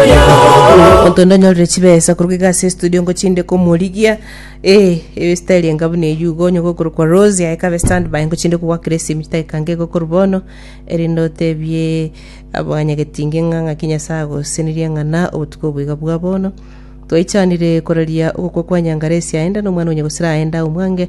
Omonto onde onyorire chibesa korwa iga ase estudio ngochinde komorigia eh, ebe style enga buna eyio igo onye gokorokwa Rose aye kabe standby ngochinde kogwakera esimi chidakika inga igo korwa bono erinde otebie abanyagetinge ng'a ng'aki Nyasae agosenerie ng'a na obotuko obo iga bwa bono. Twaichanire koraria ogokwa kwa Nyangaresi aenda nomwana o nyagusera aenda omwange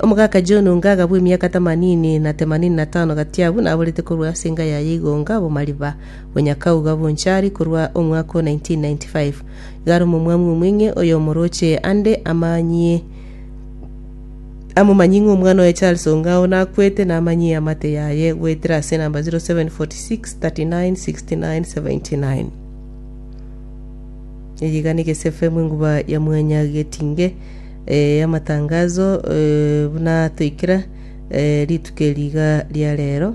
Omogaka John Ongaga bw'emiaka themanini na themanini na tano gati abwo naborete korwa ase enga yaye igonga obomariba bwa Nyakau gabonchari korwa omwaka o 1995. Igare omomwami omweng'e oyomoroche ande amanyie amomanyie ng'a omwana oye Charles Ongao nakwete namanyie amate yaye goetera ase namba 0746 39 69 79. Eye iga negesafe mwenguba ya Mwanya Getinge. Eh, amatangazo eh, buna toikera eh, rituko eri iga ria rero.